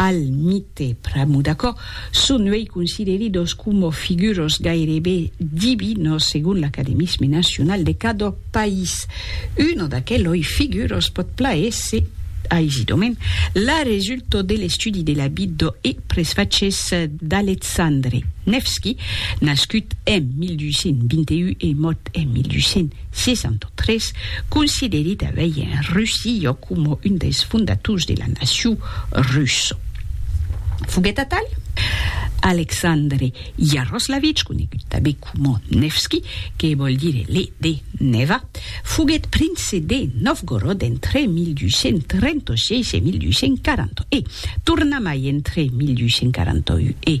al mite pr'amor d'aquò, son uèi consideridos coma figuros gairebe divinos segon l'academisme nacional de cada país. Una d'aqueloi figuros pòt plaéser aisidament la resulta de l'estudi de la vida e presfachés d'Alexandre Nevski, nascut en 1221 e mòrt en 1200. 1863, consideri tanbei en Russillo coma un dels fondators de la nacion russa. Foguèt atal, Alexandre Yaroslavich, conegut tanbei coma Nevski, que vòl dire le de Neva, foguèt prince de Novgorod entre 1236 e 1240 e, tornamai entre 1241 e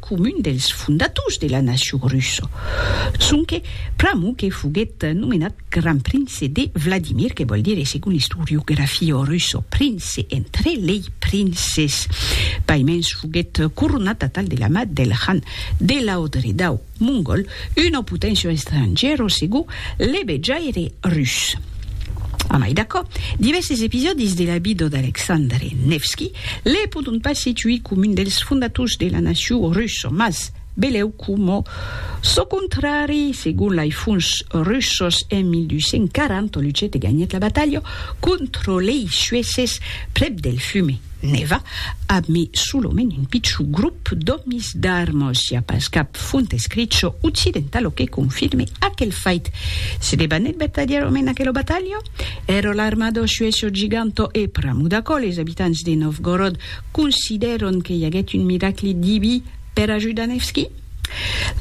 comun dels fondators de la nacion russa, sonque pr'amor que foguèt nomenat Grand Prince de Vladimir, que vòl dire, segon l'istoriografia russa, prince entre lei princes. Paimens foguèt coronat atal de la mà del Khan de Laodridau mongòl, Una poténcia estrangèra segur le vejaire rus. A mai d'aquò, divèrses episòdis de la vida d'Aleksandre Nevski le pòdon pas situir com un dels fondators de la nacion russa, mas belèu coma çò contrari, segon lai fons russas en 1240 luchet e ganhèt la batalha contra lei sueses prèp del Fume. Neva, ab mi solomènt un pichon grop d'òmis d'armos, i a pas cap font escricho occidentalo que confirme aquel fait. Se debanèt batalhar o men aquelo batalho? Ero l'armado suesso giganto e pramudaco les abitants de Novgorod considèron que i aguèt un miracli diví per ajudar Nevski?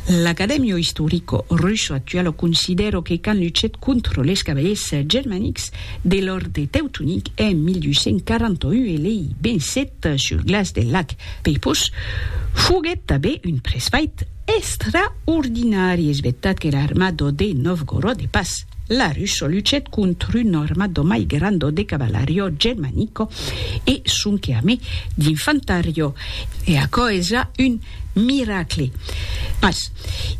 L'Academio Istorico Russo Actualo considero que quand luchèt contra les cavaliers germanics de l'Òrde Teutonic en 1241 e lei vencèt sul glaç del lac Peipus, foguèt tanben un presfait extraordinari, es vertat que l'armado de Novgorod e pas la russo luchèt contra un armado mai grando de cavalario germanico e sonque amé d'infantariò, e aquò es ja un. Miracle! Mas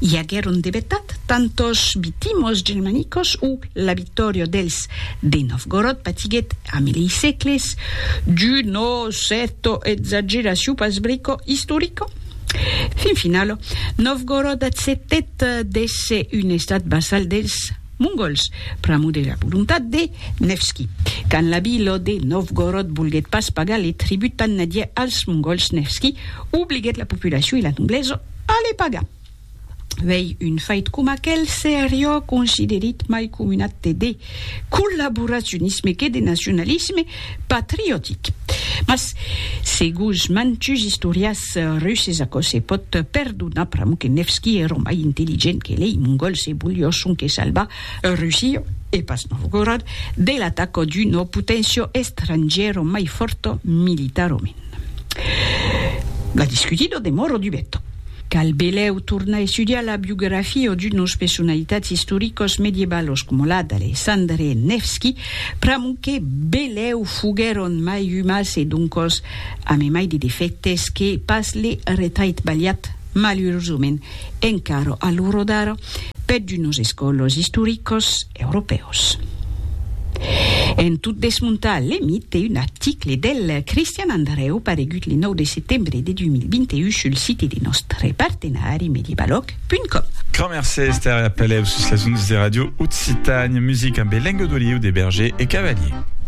i aguèron de vetat tantos vitimos germanicos o la victòria dels de Novgorod patiguèt a milei sègles d'una cèrta exageracion pas brico istorica? Fin finala, Novgorod acceptèt d'èsser un estat vassal dels. Mongols, pr'amor de la volontat de Nevski. Quand l'abi Lo de Novgorod volguèt pas pagar le tribut tan nadièr als Mongols, Nevski obliguèt la populacion e la noblesa a le pagar. Uèi, un fait coma aquel seriá considerit mai coma un acte de collaboracionisme que de nacionalisme patriotic. Mas, segus mantuns istorians, Eth Russes aquò se pòt perdonar pr'amor que Nevski ère mai intelligent que lei, Mongol se volió sonque salvar, Russia, e pas Novgorod, de l'ataca d'una poténcia estrangièra mai fòrta militarament. La discutida demòra dubeta. Cal belèu tornar estudiar la biografia d'unas personalitats istoricas medievalas coma la d'Alexandre Nevski pr'amor que belèu foguèron mai umans e doncas Ami mai de defèctes que pas li retait balhat, malurosament, encara a l'ora d'ara, per d'unos escòlos istoricos europèus. En tot desmontar le mite, un article del Cristian Andrèu paregut le 9 de setembre de 2021 sul site de nòstre partenari medibalòc.com. Grand mercé Esther e a pelèu sus las ondas de Radio Occitània, musica ambe lenga d'oliu de Berger e Cavalier.